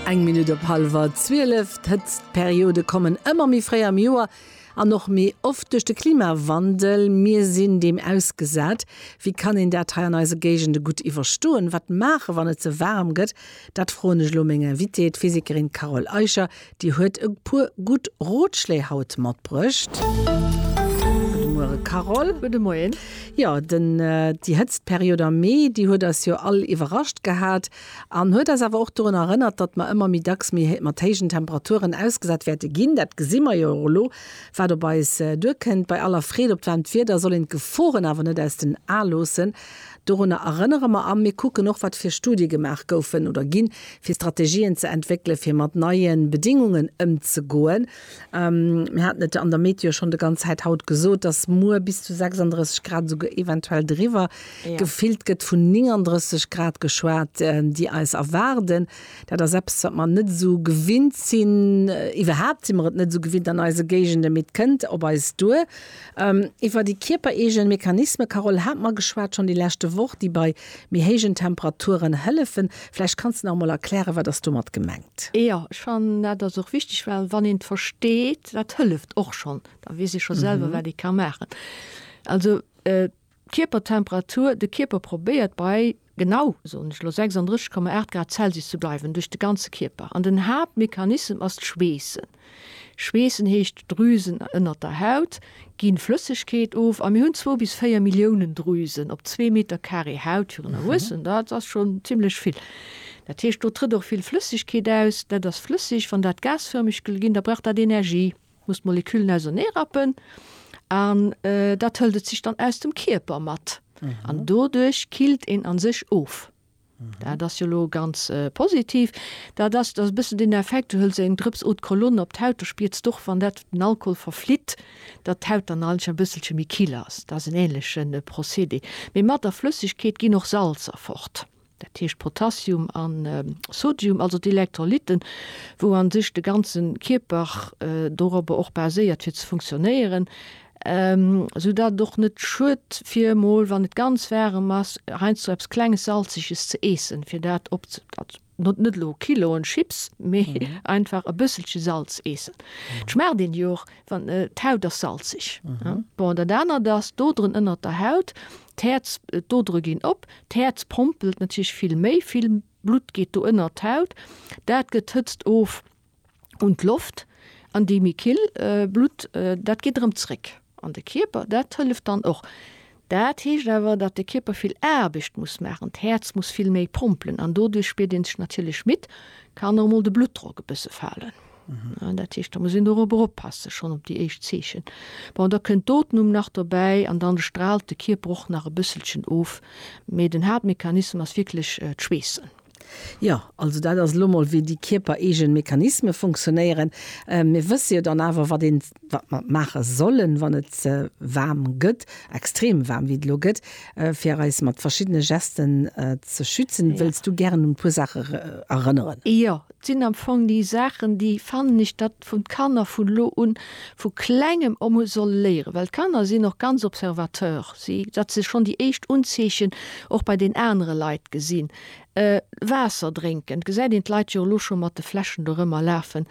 Eng Minutt op hallwer 12. D'Hëtztperiode kommen ëmmer méi fréi am Joer an och méi oft duerch de Klimawandel. Mir sinn deem ausgesat. Wéi kann een dat hei an eise Géigende gutt iwwerstoen? Wat maachen, wann et ze waarm gëtt? Dat froen ech elo meng Invitée, d'Physikerin Carole Eicher, Déi huet e puer gutt Rotschléi haut matbruecht. Gudde Muere Carole. Gudde Moien. Jo, den, déi Hëtztperiod am Mee, déi huet eis jo all iwwerrascht gehat an huet eis awer och dorun erënnert, datt mer ëmmer méi dacks méi mat héijen Temperaturen ausgesat wäerte ginn. Dat gesi mer jo och elo, wat op eis duerkënnt. Bei aller Freed op d'waarmt Wieder soll een d'Geforen awer net aus den Ae loossen. Dorunner erënnere mer a mir kucken och, wat fir Studie gemaach goufen oder ginn, fir Strategien ze entwéckele fir mat neie Bedingungen ëmzegoen. Mir haten et an der Meteo schonn de ganz Zäit haut gesot, dass muer bis zu 36 Grad, esouguer eventuell driwwer, gefillt gëtt, vun 39 Grad geschwat, déi eis erwaarden. Dat ass eppes, wat mer net esou gewinnt sinn. Iwwerhaapt si mer et net esou gewinnt an eise Géigenden, mee et kënnt op eis duer. Iwwer déi kierpereegen Mechanismen, Carole, hat mer geschwat schonn déi leschte Woch, déi bei méi héijen Temperaturen hëllefen. Vläicht kanns de nach emol erklären, wat ass domat gemengt? Jo, ech fannen dat ass och wichteg, well wann een et versteet, wat hëlleft och schonn, da weess ee scho selwer, wat ee ka maachen. Also. D'Kierpertemperatur, de Kierper probéiert bei genau, soen ech elo, 36,8 Grad Celsius ze bleiwen, duerch de ganze Kierper. An den Haaptmechanissem ass d'Schweessen. Schweessen heescht, Drüsen ënnert der Haut gi Flëssegkeet of a mir hunn zwou bis véier Milliounen Drüsen op zwee Meter Carré Haut. Fir en Erwuessen, dat ass schonn zimmlech vill. Dat heescht, do trëtt och vill Flëssegkeet aus. Dat ass flësseg. Wann dat gasfërmeg gëtt, da brauch dat Energie. muss d'Molekülen auserneerappen an dat hëlt et sech dann aus dem Kierper mat an mhm. doduerch killt een an sech of. Mhm. Dat ass jo lo ganz äh, positiv. Da dass das bëssen den Effekt du hëlls eng Drëps Eau de Cologne op d'Haut, du spiers doch wann dat den Alkohol verflitt, dat d'Haut dann alch en bësselche méi kill ass. Dat ass en ähnlechen äh, Procédé. Mee mat der Flëssigkeet ginn och Salzer fort. dat heescht Potassium a Sodium, also d'Elektrolytten, wou a sech de ganze Kierper dorobber och baséiert fir ze funktionéieren, soudatt et och net schued fir emol, wann et ganz waarem ass, heiansdo eppes Klenges Salzeges ze eessen, fir dat op, also net elo Kiloen Chips, mee einfach e bësselche Salz eessen. Et schmaacht een jo och, wann, d'Haut ass salzeg. Bon, dat anert ass, d'Oderen ënnert der Haut, D'Häerz, d'Odere ginn op, d'Häerz pompelt natierlech vill méi, vill Blutt geet do ënnert d'Haut, dat gëtt d'Hëtzt of un d'Loft an déi méi kill Blutt, dat geet erëm zréck an de Kierper, dat hëlleft dann och. Dat heescht awer, datt de Kierper vill Aarbecht muss maachen, d'Häerz muss vill méi pompelen an doduerch spiert ee sech natierlech midd, kann och mol de Bluttdrock e bësse falen. Dat heescht, da muss een dorobber oppassen, schonn op déi éischt Zeechen. Bon, da kënnt d'Ootmung nach dobäi an dann straalt de Kierper och nach e bësselchen of, mee den Haaptmechanismus ass wierklech d'Schweessen. Jo, also dat ass elo mol, wéi déi kierpereegen Mechanisme funktionéieren. Mir wësse jo dann awer, wat een, wat mer maache sollen, wann et waarm gëtt, extrem waarm, wéi et elo gëtt, fir eis mat verschiddene Gesten ze schützen. Wëlls du gären un e puer Saache erënneren? Jo, Et sinn am Fong déi Saachen, déi fannen ech, datt vun d'Kanner vun elo un, vu Klengem o mol solle léieren, well d'Kanner sinn och ganz Observateur, si, datt se schonn déi éischt Unzeechen och bei den anere Leit gesinn. Waasser drénken, et gesäit een d'Leit jo elo scho mat de Fläschen dorëmmer lafen.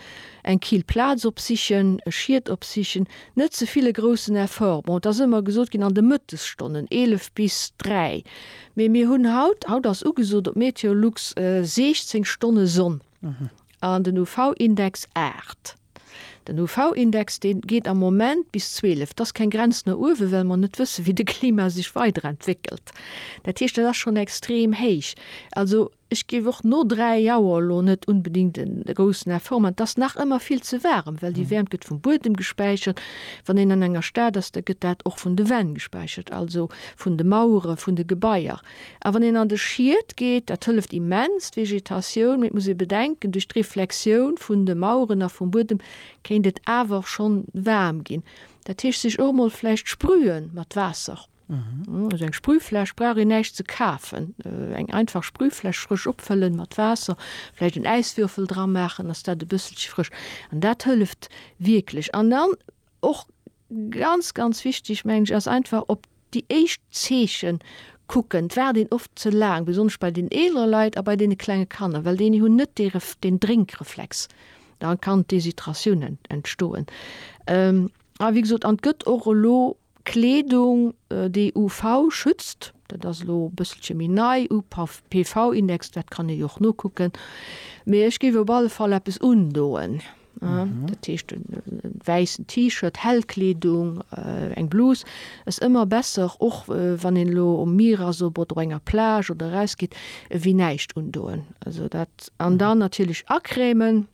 Eng kill Plaz opsichen, e Schiet opsichen, net ze vill e groussen Effort. Bon, et ass ëmmer gesot ginn an de Mëttesstonnen, 11 bis 3, Mee mir hunn haut, haut ass ugesot op Meteolux 16 Stonne Sonn an den UV-Index 8. Den UV-Index dee geet am Moment bis 12. Et ass keng Grenz no uewe well mer net wësse wéi de Klima sech weiderentwéckelt. Dat heescht dat ass schonn extrem héich. Also Ech géif och no 3 Auer lo net unbedingt en groussen Effort man. Et ass nach ëmmer vill ze waarem, well déi Wäermt gëtt vum Buedem gespäichert. Wann een an enger Stad ass, da gëtt dat och vun de Wänn gespäichert, also vun de Mauere vun de Gebaier. A wann een an de Schied geet, dat hëlleft immens, d'Vegetatioun. Mee et muss ee bedenken, duerch d'Reflexioun vun de Maueren a vum Buedem kéint et awer schonn waarm ginn. Dat heescht, sech och emol vläicht sprüe mat Waasser. Aus eng Sprühfläsch brauch een näischt ze kafen. Eng einfach Sprühfläsch frësch opfëllen mat Waasser, vläicht en Äiswürfel dra maachen, ass dat e bësselche frësch an dat hëlleft wierklech. An dann och ganz ganz wichteg mengen ech ass einfach op déi éischt Zeechen kucken. Et waart een oft ze laang, besonnesch bei den eelere Leit a bei deene klenge Kanner, well déini hunn net dee den Drénkreflex. Da kann d'Deshydratioun entstoen. A wéi gesot, an et gëtt och elo Kleedung déi UV schützt, dat ass elo e bësselche méi nei, UPV Index, dat kann ee jo och nokucken, mee ech géif op alle Fall eppes undoen, dat heescht e wäissen T-Shirt, hell Kleedung, eng Blus ass ëmmer besser, och wann een elo um Mier ass oder op enger Plage oder erausgeet, ewéi näischt undoen, also dat an dann natierlech acrèmen.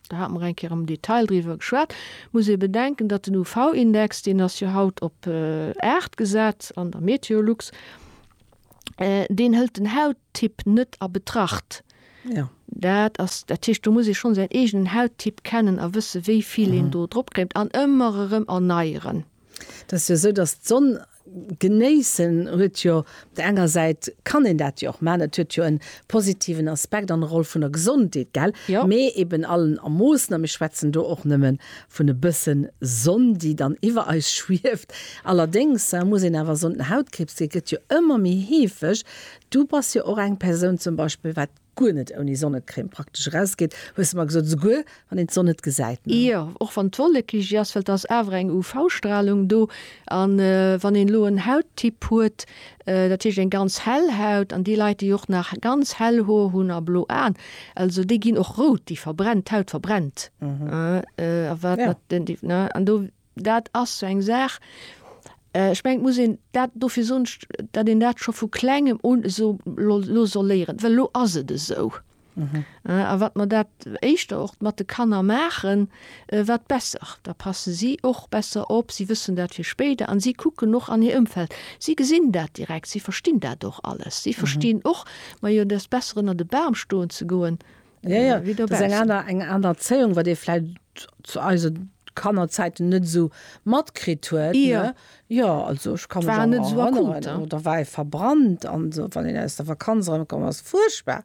do hate mer eng Kéier am Detail driwwer geschwat, muss ee bedenken, datt den UV-Index, deen ass jo haut op 8 gesat an der Meteolux, deen hëlt den Hauttyp net a Betracht. Jo. Dat ass, dat heescht, do muss ee schonn säin eegenen Hauttyp kennen a wësse wéi vill een do drop kréimt an ëmmer erëm erneieren. Dat ass jo esou, datt d'Sonn Genéissen huet jo, op der enger Säit kann een dat jo och maachen, et huet jo en positiven Aspekt an Roll vun der Gesondheet, gell? Mee eben Allen a Moossen, a mir schwätzen do och nëmme vun e bëssen Sonn, déi dann iwwer eis schwieft. Allerdéngs muss een awer soen, den Hautkriibs, dee gëtt jo ëmmer méi heefeg. Du bass jo och eng Persoun zum Beispill, wat guer net ouni Sonnecrème praktesch erausgeet, hues de mer gesot, esouguer wann een d'Sonn net gesäit, ne? Jo, och wann d'Wollekiggi ass, well et ass awer eng UV-Stralung do. An wann een elo en Hauttyp huet, dat heescht eng ganz hell Haut, an déi Leit déi och nach ganz hell Hoer hunn a blo Aen, also déi ginn och rout, déi verbrennt, d'Haut verbrennt, a wat, an do. Dat ass sou eng Saach, ech mengen, et muss een dat, dofir soen ech, datt een dat scho vu Klengem un esou lo soll léieren, well elo ass et esou. A wat mer dat éischter och mat de Kanner maachen, wat besser. Da passe si och besser op, si wëssen dat fir spéider an si kucken och an hir Ëmfeld. Si gesinn dat direkt, si verstinn dat och alles. Si verstinn och, majo, et ass besser ënner de Bam stoen ze goen, ja, ja. wéi dobaussen. Eng aner, eng aner Erzéiung, wat ee vläit zu eise Kannerzäiten net esou matkritt huet. Ja. Ja, also ech ka mech an net esou akut, hein. Da war ee verbrannt an esou, wann een aus der Vakanz erëmkomm ass. Fuerchtbar.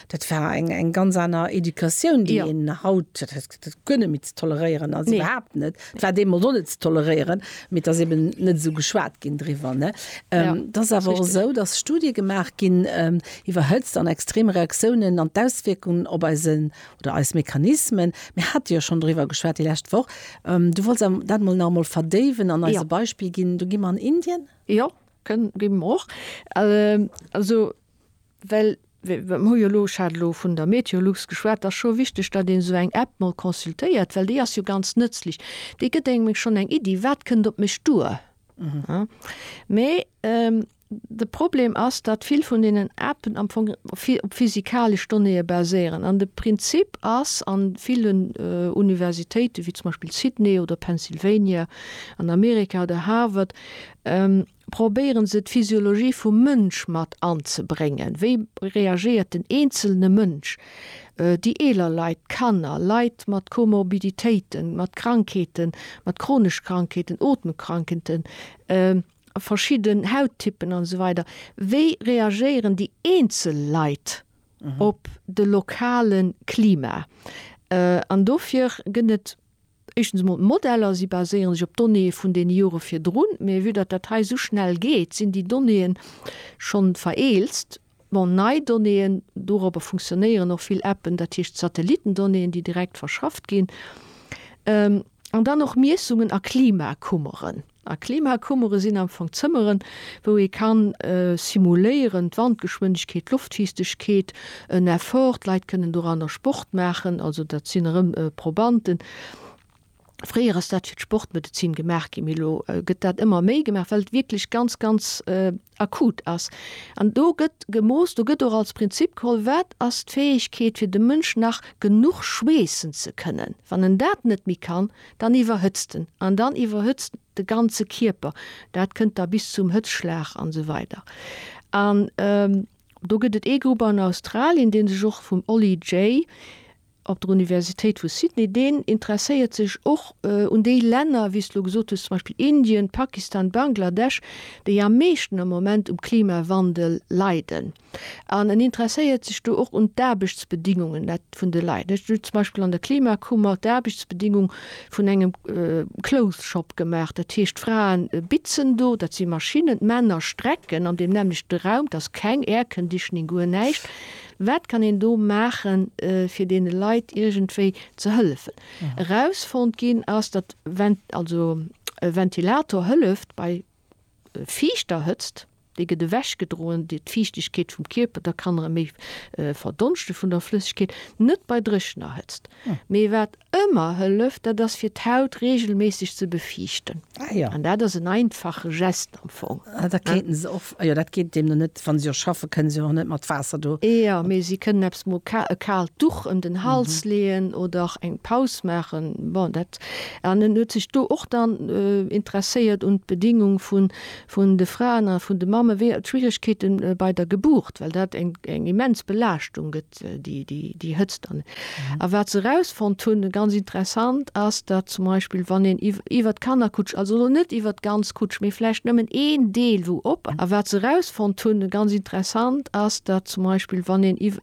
Dat war eng, eng ganz aner Educatioun, déi een haut. Dat guer net méi ze toleréieren ass, iwwerhaapt net. Et war deemools och net ze toleréieren, mee et ass eben net esou geschwat ginn driwwer. Et ass awer och esou, dass Studie gemaach ginn iwwer Hëtzt an extrem Reaktiounen an d'Auswierkungen op eise oder eis Mechanismen. Mir hate jo schonn driwwer geschwat déi lescht Woch. Du wollts awer dat emol nach emol verdéiwen an eis e Beispill ginn. Do gi mer an Indien. Jo, kënn, gi mer och. Also. Well mir hu jo elo, ech hat elo vun der Meteolux geschwat, et ass scho wichteg, datt een esou eng App mol consultéiert, well déi ass jo ganz nëtzlech. Déi gëtt engem meng schonn eng Iddi, wat kënnt op mech duer. Mee de Problem ass, datt vill vun deenen Appen am Fong op physikalesch Donnéeë baséieren. An de Prinzip ass a villen Universitéiten, wéi zum Beispill Sydney oder Pennsylvania an Amerika oder Harvard, probéieren se d'Physiologie vum Mënsch mat anzebréngen, wéi reagéiert den eenzelne Mënsch, déi eeler Leit, d'Kanner, Leit mat Komorbiditéiten, mat Krankheeten, mat chronesch Krankheeten, Otemkrankheeten, verschidden Hauttyppen an esou weider, wéi reagéieren déi eenzel Leit op de lokale Klima an dofir gëtt et. Éischtens emol, d'Modeller, si baséiere sech op Donnéeë vun deene Jore virdrun, mä vue datt dat hei esou schnell geet, sinn déi Donnéeë schonn vereelzt. Bon, nei Donnéeën, dorobber funktionéieren och vill Appen, dat heescht d'Satellitendonnéeën, déi direkt verschafft ginn, an dann och Miessungen a Klimakummeren. A Klimakummere sinn am Fong Zëmmeren, wou ee ka simuléieren, d'Wandgeschwindegkeet, d'Loftfiichtegkeet, en Effort, d'Leit kënnen doranner Sport maachen, also dat sinn erëm Probanten. Fréier ass dat fir d'Sportmedezin gemaach ginn, mee elo gëtt dat ëmmer méi gemaach, well et wierklech ganz, ganz Akut ass. An do gëtt gemooss, do gëtt och als Prinzip geholl, wat ass d'Fäegkeet fir de Mënsch nach genuch schweessen ze kënnen. Wann en dat net méi kann, dann iwwerhëtzt en an dann iwwerhëtzt de ganze Kierper. Dat kënnt da bis zum Hëtzschlag an esou weider. An do gëtt et ee Grupp an Australien, dee sech och vum Ollie Jay, op der Universitéit vu Sydney, deen interesséiert sech och un déi Länner, wéi s de elo gesot hues, zum Beispill Indien, Pakistan, Bangladesch, déi am meeschten am Moment um Klimawandel leiden. An en interesséiert sech do och un d'Aarbechtsbedingungen vun de Leit. Ech hunn zum Beispill an der Klimakummer d'Aarbechtsbedingung vun engem Clothes Shop gemaach. Dat heescht, d'Fraen bitzen do, dat si Maschinnen, d'Männer strecken an deem nämmlechte Raum, et ass keng Air Conditioning, guer näischt. Wat kann een do maachen, fir deene Leit iergendwéi ze hëllefen? Erausfonnt ginn ass, datt also e Ventilator hëlleft bei fiichter Hëtzt, déi gëtt ewechgedroen, déi d'Fiichtegkeet vum Kierper, da kann erëm méi verdonschte vun der Flëssegkeet, net bei dréchener Hëtzt. Mee wat Ëmmer hëlleft, dat ass fir d'Haut reegelméisseg ze befiichten. Ah jo. An dat ass en einfache Geste am Fong. Ah, da kéinte se och, jo, dat geet deemno net, wa si och schaffen, kënne si och net mat Waasser do. Jo, mee si kënnen eppes mo e kaalt Duch ëm den Hals leeën oder eng Paus maachen. Bon, dat, an en huet sech do och dann interesséiert un d'Bedingung vun, vun de Fraen a vun de Mamme, wéi, d'Schwieregkeete bei der Geburt, well dat eng, eng immens Belaaschtung gëtt. déi Hëtzt an. A wat se erausfonnt hunn, ganz interessant, ass, datt zum Beispill, wann een iwwert d'Kannerkutsch, also elo net iwwert d'ganz Kutsch, mee vläicht nëmmen een Deel, wou op. A wat se erausfonnt hunn, ganz interessant, ass, datt zum Beispill, wann een iwwer.